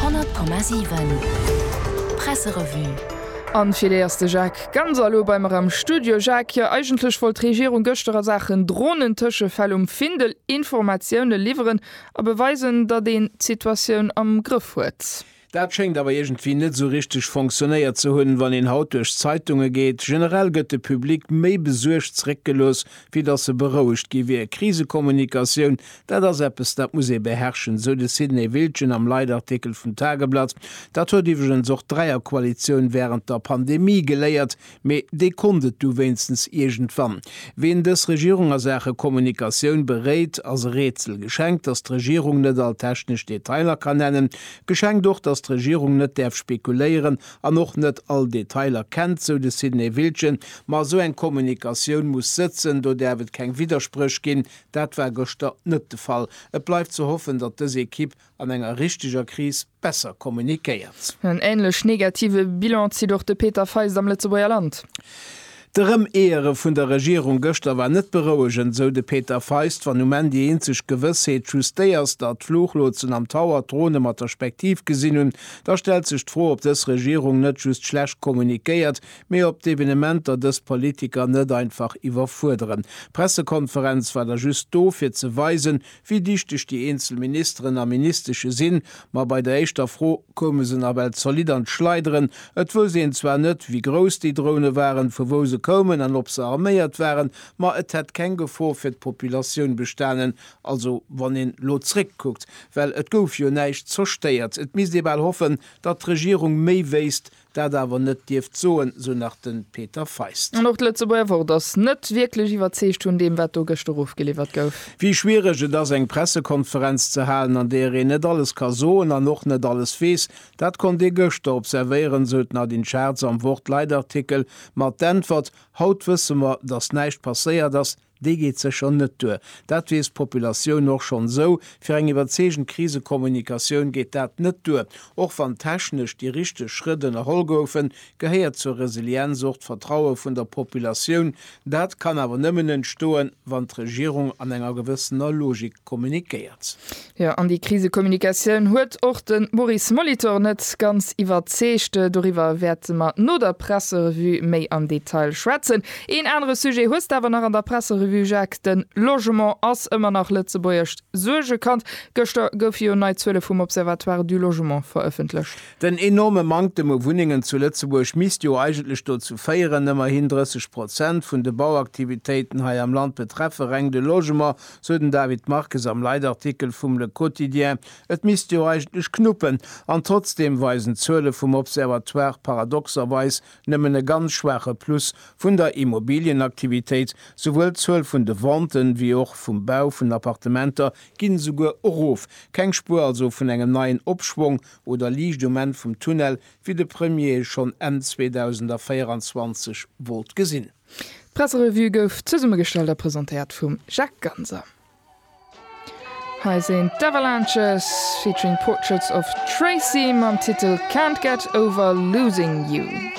100,7 Presserevue An fir déi ass de Jacques Ganser elo bei mer am Studio. Jacques, jo eigentlech wollt d'Regierung gëschter a Saachen Drohnentëschefäll um Findel Informatioune liwweren a beweisen, datt een d'Situatioun am Grëff huet. Dat schéngt awer iergendwéi net esou richteg fonctionnéiert ze hunn, wann een haut duerch d'Zeitunge geet. Generell gëtt de Public méi besuergt zeréckgelooss, wéi datt e berouegt gi wier. Krisekommunikatioun Dat ass eppes, dat muss ee beherrschen, sou de Sidney Wiltgen am Leitartikel vum Tageblatt. Dat huet iwwregens och d'Dräierkoalitioun wärend der Pandemie geléiert, mee déi konnt et du wéinstens iergendwann. Wien dës Regierung a Saache Kommunikatioun beréit, ass e Rätsel. Geschenkt, datt d'Regierung net all technesch Detailer kann nennen. Geschenkt och, datt d'Regierung net däerf spekuléieren an och net all Detailer kennt, sou de Sidney Wiltgen. Ma esou eng Kommunikatioun muss sëtzen, do däerf et keng Widderspréch ginn, Dat war gëschter net de Fall. Et bleift ze hoffen, datt dës Ekipp an enger richteger Kris besser kommunikéiert. En änlech negative Bilan zitt och de Peter Feist am Lëtzebuerger Land. D'Erëmeeëre vun der Regierung gëschter war net berouegend, esou de Peter Feist. Wann um Enn déi eenzeg Gewëssheet just déi ass, datt d'Fluchlotsen am Tower d'Drone mat der Spektiv gesinn hunn, da stellt sech d'Fro, ob dës Regierung net just schlecht kommunikéiert, Mee op d'Evenementer dës Politiker net einfach iwwerfuerderen. D'Pressekonferenz war da just do, fir ze weisen, wéi dichteg déi eenzel Ministeren a Ministesche sinn. Ma bei der éischter Fro koume se nawell zolidd an d'Schleideren. Et wousst een zwar net, wéi grouss déi Drone waren, vu wou se koumen an ob se arméiert waren, ma et hätt keng Gefor fir d'Populatioun bestanen. Also wann een elo zréckkuckt, well et gouf jo näischt zerstéiert. Et misst ee bal hoffen, datt d'Regierung méi wéisst, dat awer net dierft soen, sou nach de Peter Feist. An och d'Lëtzebuerger Wort ass net wierklech iwwerzeegt vun deem, wat do gëschter ofgeliwwert gouf. Wéi schwiereg et ass, eng Pressekonferenz ze halen, an deeër een net alles ka soen an och net alles weess, dat konnt ee gëschter observéieren, sou d'Nadine Schartz am Wort-Leitartikel. Ma d'Äntwert, Haut wësse mer, datt näischt passéiert ass, Déi geet sécher net duer. Dat weess d'Populatioun och schonn esou. Fir eng iwwerzeegend Krisekommunikatioun geet dat net duer. Och wann technesch déi richteg Schrëtt ënnerholl goufen, gehéiert zur Resilienz och d'Vertraue vun der Populatioun. Dat kann awer nëmmen entstoen, wann d'Regierung an enger gewëssener Logik. kommunikéiert. Jo, an déi Krisekommunikatioun huet och de Maurice Molitor net ganz iwwerzeegt. Doriwwer wäerte mer no der Presserevue méi am Detail schwätzen. Een anere Sujet hues de awer nach an der Presserevue, Jacques, Den Logement ass ëmmer nach lëtzebuergescht Suergekand. Gëschter goufe jo nei Zuele vum Observatoire du Logement verëffentlecht. Den enorme Manktem u Wunnengen zu Lëtzebuerg misst jo eigentlech dozou féieren, ëmmerhin 30 Prozent vun de Bauaktivitéiten hei am Land betreffe reng de Logement, sou den David Marques am Leitartikel vum Le Quotidien. Et misst jo eigentlech knuppen, an trotzdeem weisen d'Zuele vum Observatoire paradoxerweis nëmmen e ganz schwaache Plus vun der Immobilienaktivitéit, souwuel d'Zuel vun de Venten wéi och vum Bau vun Appartementer ginn esouguer erof. Keng Spuer also vun engem neien Opschwong oder Liicht um Enn vum Tunnel, wéi de Premier e schonn Enn 2024 wollt gesinn. D'Presserevue gouf zesummegestallt a presentéiert vum Jacques Ganser. Hei sinn d'Avalanches featuring Portraits of Tracy mam Titel Can't Get Over Losing You.